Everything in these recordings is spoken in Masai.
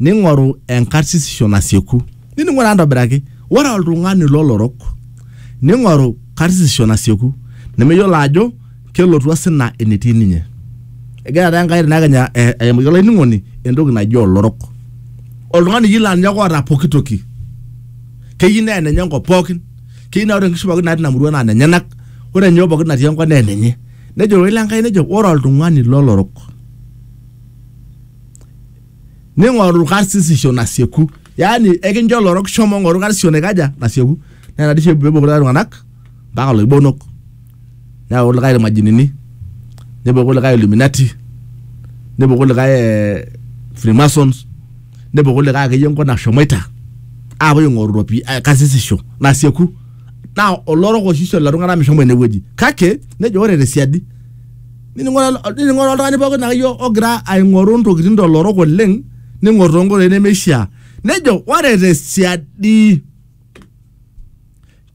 ning'oru enkarsisisho nasieku. Ninining'o taa ntobiraki, ore oltung'ani lolorok ning'oru karsisisho nasieku nemeyiolo ajo kelotu osina enetii ninye. Egira taa Enkai tinakenya aimaki olainining'oni entoki naji olorok. Oltung'ani oyieu laa ninye ake oota pooki toki. Keyieu naa enenye enkop pookin, keyieu naa ore nkishu pookin natii ina murua naa nenyenak, ore nyoo pookin natii enkop naa enenye. Nejo ororei le Nkai nejo ore oltung'ani lolorok. ning'oru karsisisho nasieku yaani ekincho lorok shomo ng'oru karsisisho naikaja nasieku naa ina dii oshi pepuo kulikae tung'anak mpaka loibonok neyaku kulikae irmajinini nepuo kulikae illuminati nepuo kulikae eh, freemasons nepuo kulikae akeyie enkop nashomoita apuo aing'oru ropi eh, karsisisho nasieku naa olorok oshi oisho lelo tung'anak meshomo inewueji kake nejo ore tesiadi nining'ore oltung'ani pookin akeyie ogira aing'oru ntokitin tolorok oleng ning'or toonkoitoi nemeishiaa nejo ore tesiadi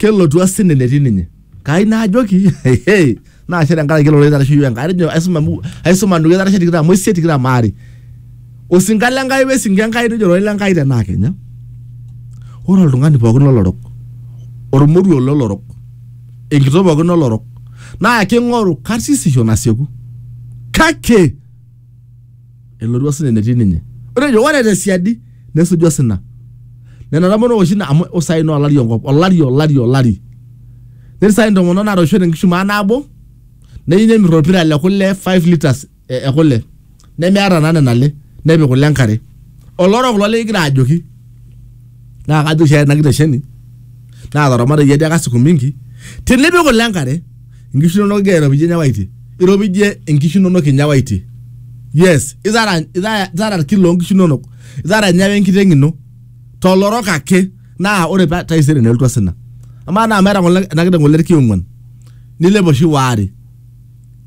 kelotu asina enetii ninye kai naajoki hehe naashe tenkaraki ele ororei oitaraishe iyiook Enkai atejo aisuma mu- aisuma nduat itarishe tikitam oisiet tikitam aare osinka le Nkai wesinka e Nkai nejo ororei le Nkai tenaa kenya ore oltung'ani pookin lolorok ormoruo lolorok enkitok pookin olorok naa king'oru karsisisho nasieku kake elotu osina enetii ninye ore ejo ore tesiadi nesuju osina nena tomonok oshi na- amu usai naa olari enkop olari olari olari netii sai intomonok natoishote enkishu maa nabo neyieu nemirr orpira le kule 5 litres e, e kule nemeata naa nena ale nepik kule enkare olorok kulo likigira ajoki naa kajo oshi ena kitesheni naataramatayie ajo aka siku mingi tinipik kule enkare inkishu inonok igira airopijie nyawaitie iropijie inkishu inonok inyawaitie yes itara itara itara irkilo loonkishu inonok itara nyawa enkiteng ino tolorok ake naa ore pa- taisere nelotu osina amaa naa meeta ng'ole ena kiteng ng'ole irki ong'uan nilep oshi waare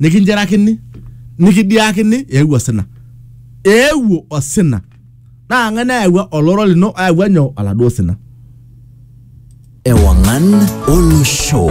nikinjerakini nikidiakini eewuo osina eewuo osina naa ng'ae nayawua oloro lino ayawua nyoo oladuo sina Ewangan Olo Show.